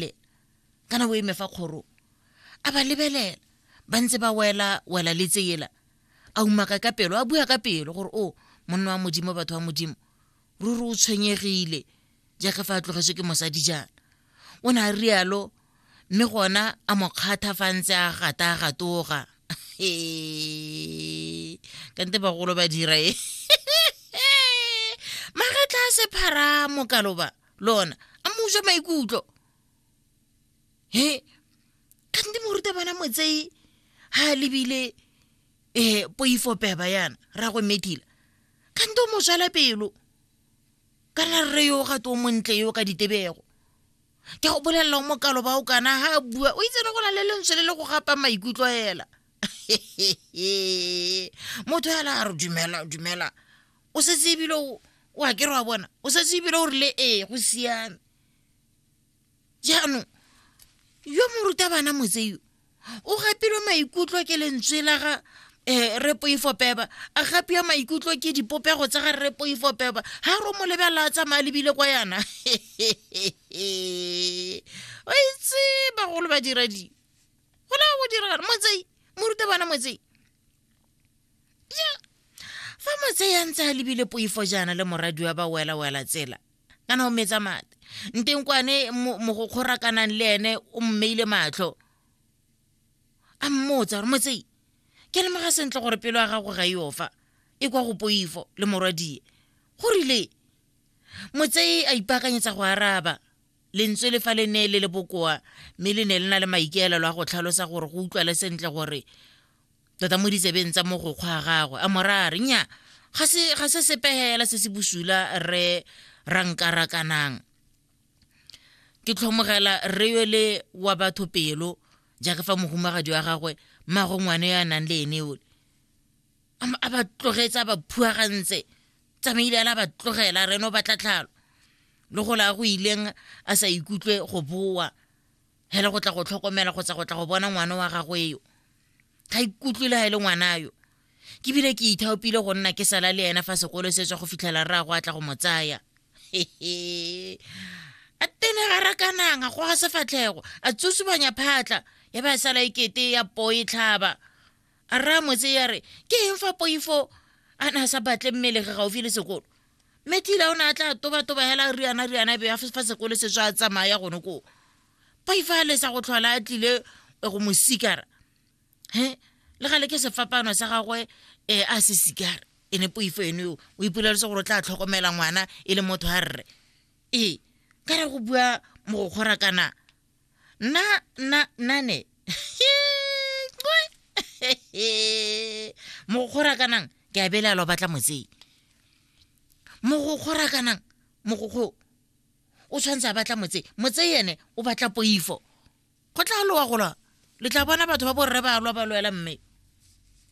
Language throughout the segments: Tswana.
le ka nabo eme fa kgoro a ba lebelela ba ntse ba wela wela le tsela a umaka ka pelo a bua ka pelo gore o monna wa modimo batho wa modimo ruri o tshwenyegile jaaka fa a tlogetswe ke mosadi jaana o ne a rialo mme gona a mo kgatha fa ntse a gata a gatoga kante bagolo ba dira e magetla a sephara mokaloba lona a mo utswa maikutlo he kante morutabana motsei ha a lebile um poifo peba yana ra go medila kante o mo tswala pelo kana rre yo ga to montle yo ka ditebego ke go bolelela o mokalo ba o kana ha a bua o itsene go na le lentswe le le go gapa maikutlo hela motho hela a re dumela dumela o setse ebile o a kere wa bona o setse ebile o rile ee go siame jaanong yo morutabana motseyo o gapilwe maikutlo ke lentswe la ga um re poifo peba a gapiwa maikutlo ke dipopego tsa ga re poifo peba ga ro mo lebelela a tsamaya lebile kwa yana o itse bagolo ba dira di go la go dira motsei morutabana motsei fa motseyang tsa lebile poifo jaana le moradi wa ba wela-wela tsela kana o metsa mate nteng kwane mogokgora kanang le ene o mmeile matlho a mmotsa gore motsei ke lemoga sentle gore pelo ya gago ga eo fa e kwa go poifo le morwadie go rile motsei a ipaakanyetsa go araba lentswe le fa le ne le le bokoa mme le ne le na le maikaelelo a go tlhalosa gore go utlwale sentle gore tota mo ditsebeng tsa mogokgwa a gagwe a morare nya ga se sepegela se se bosula re rankarakanang ke tlhomogela re yo le wa batho pelo jaaka fa mohumagadi wa gagwe mmago ngwane yo a nang le ene ole a ba tlogetse a ba phuagantse tsamaile a la ba tlogela reno ba tlatlhalo le go la go ileng a sa ikutlwe go boa hele go tla go tlhokomela kgotsa go tla go bona ngwana wa gagwe yo ga ikutlwe le ga e le ngwana yo ke bile ke ithaopile go nna ke sala le ena fa sekolo se tswa go fitlhela rra go a tla go mo tsaya a tene ga rakanang a goga sefatlhego a tsosubanya phatla ya ba sala ekete ya poe tlhaba a raya motse ya re ke eng fa poifo a ne a sa batle mmele ge gaufi le sekolo mme tila o ne a tla tobatoba hela riana riana be a fa sekolo se tswa a tsamaya gone koo poifo a lesa go tlhola a tlile go mo sikara he le gale ke sefapano sa gagwe um a se sikara e ne poifo ene o ipoleletse gore o tla tlhokomela ngwana e le motho a rre ee ka re go bua mogokgora kana Na, na, nane. mogokgora kanang ke a belaelwa batla motsei mogokgora kanang mogokgo o tshwanetse a batla motse motse ene o batla poifo go tla lowa gola le tla bona batho ba borre ba lwa ba lwela mme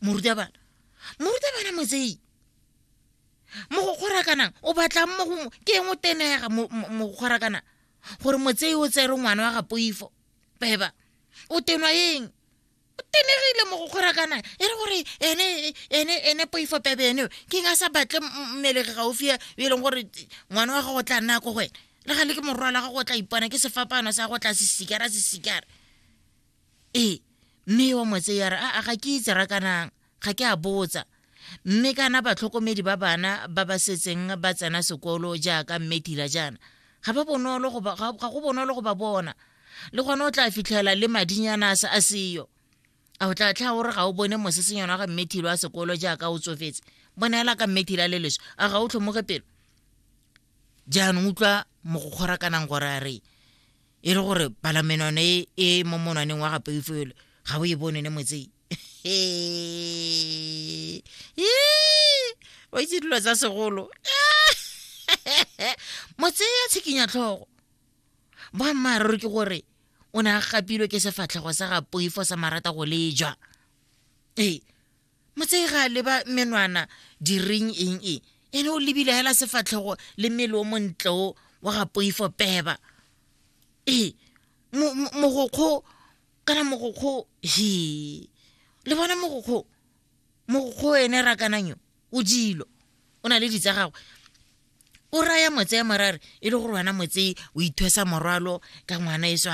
morutabana morutabana motsei mogokgora kanang o batlang mo ke eng o tenega mogokgora kanang gore motsei o tsere ngwana wa ga poifo beba o tenwa eng o tenegile mo go kgorakana e re gore ene ene ene poifo pebe ene ke nga sa batle mmelege gaufi e leng gore ngwana wa gago o tla nna ko go wena le ga le ke morwa la gago o tla ipona ke sefapano sa go tla sesikara sesikara ee mme wa motse ya re a ga ke itse rakanang Ga ke a botsa. Mme kana batlhokomedi ba bana ba ba setseng ba tsena sekolo jaaka mme Tila jaana, ga ba bonolo go ba, ga ga go bonolo go ba bona. Le gone o tla fitlhela le madinyana a se a seyo. A o tla tlha o re ga o bone mosesenyana wa ga mme Thilo wa sekolo jaaka o tsofetse. Boneela ka mme Thila le leswe. A ga o tlhomoge pelo? Jaanong utlwa mogokgorakanang gore a re e le gore palamenone e e mo monwaneng wa ga Poifolo ga o e bone ne motsei. Ee. Ee. o itse dilo tsa segolo motseya tshikinya tlhogo boammaaruri ke gore o ne a gapilwe ke sefatlhego sa ga poifo sa marata go lejwa ee motsei ga a leba menwana diring eng e ene o lebile hela sefatlhego le mmele o montle o wa ga poifo peba ee mogokgo kana mogokgo he le bona mogokgo mogokgo ene rakananyo o dilo o na le ditsa gagwe o raya motse ya morare e le gore wena motse o ithwesa morwalo ka ngwana e swa